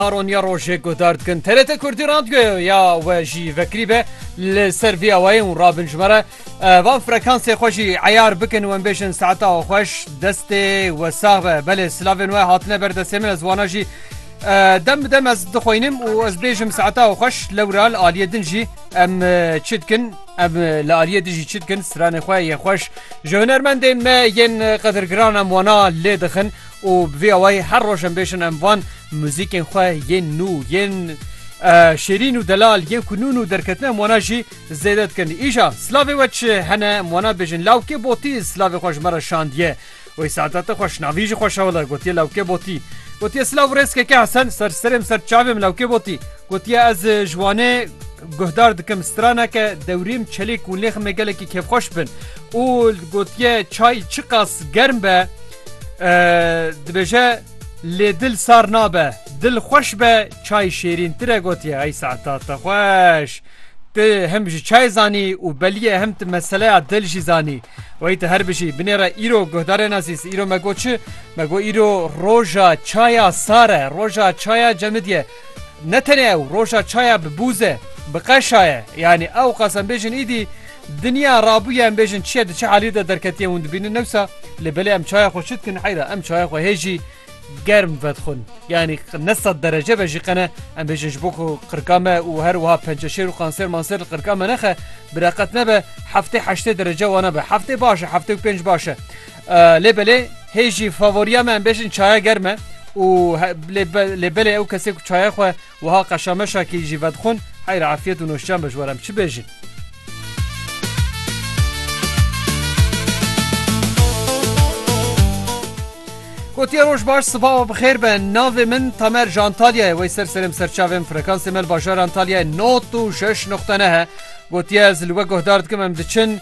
Aroniya rojê guhdar dikin. TRT Kurdî radyoyê ya we jî vekirî be li ser vî awayê û rabin ji me re van frekansê xwe jî eyar bikin û em bêjin saeta xweş destê we sax be belê silavên we hatine ber destê min ez wana jî dem bi dem ez dixwînim û ez bêjim saeta xweş lewra li aliyê din jî em çi dikin em li aliyê dijî çi dikin stranê xwe yê xweş ji hunermendên me yên qedirgiran em wana lê dixin Û bi vî awayî her roj em bêjin em van muzîkên xwe yên nû, yên şêrîn û delal, yên ku nûn û derketine em wana jî zêde dikin. Îja Silavê we çi hene em wana bêjin Lawkê Botî silavê xwe ji me re şandiye. Wê saeta te xweş navî jî xweş hewil e gotiye Lawkê Botî. Gotiye Silav û rêz Keke Hesen ser serêm ser çavêm Lawkê Botî gotiye ez ji Wanê guhdar dikim strana ke dewrîm çelîk û lêximê gelekî kêfxweş bin û gotiye çay çiqas germ be Dibêje lê dil sar nabe dil xweş be çay şêrîn tire gotiye ay saeta te xweş. Ti hem ji çay zanî û beliyê hem ti meseleya dil jî zanî. Wey te her bijî binê re îro guhdarên azîz îro me got çi? Me got îro roja çaya sar e, roja çaya cemidî ye. Ne tenê ew, roja çaya bi bûz e, bi qeşa ye. Yanî ew qas em bêjin îdî dinya rabûye em bêjin çi ye di çi halî de derketiye hûn dibînin newsa lê belê em çaya xwe çi dikin heyra em çaya xwe hê jî germ vedixwin yanî ne sed derece be jî qene em bêjin ji bo ku qirka me û her wiha penceşêr û qanser manser li qirka me nexe bireqet nebe heftê heştê derece wana be heftê baş e heftê û pênc baş e Lê belê hê jî favoriya me em bêjin çaya germ e û lê belê ew kesê ku çaya xwe wiha qeşameşa kî jî vedixwin heyr afiyet û noşcan be ji were em çi bêjin. Gotiye roj baş siba û bixêr be navê min Tamer ji Antalyayê wey ser serêm serçavên frekansê me li bajar Antalyayê not û şeş noxte nehe gotiye ez li we guhdar dikim em diçin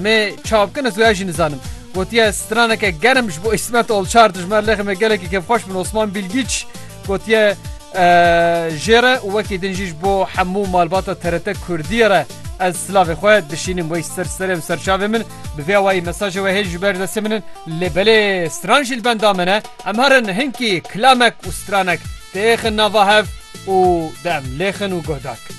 Me çav kir ez wê jî nizanim. Gotiye straneke germ ji bo Îsmet Olçar dijmer lexê me gelekî kêfxweş bin Osman Bîlgîç gotiye jê re û wekî din jî ji bo hemû malbata TRT Kurdiyê re ez silavê xwe dişînim wey ser serê em ser çavê min bi vê awayî mesajê we hê ji ber destê min in lê belê stran jî li benda min e em herin hinkî kilamek û stranek têxin nava hev û dem lêxin û guhdar kirin.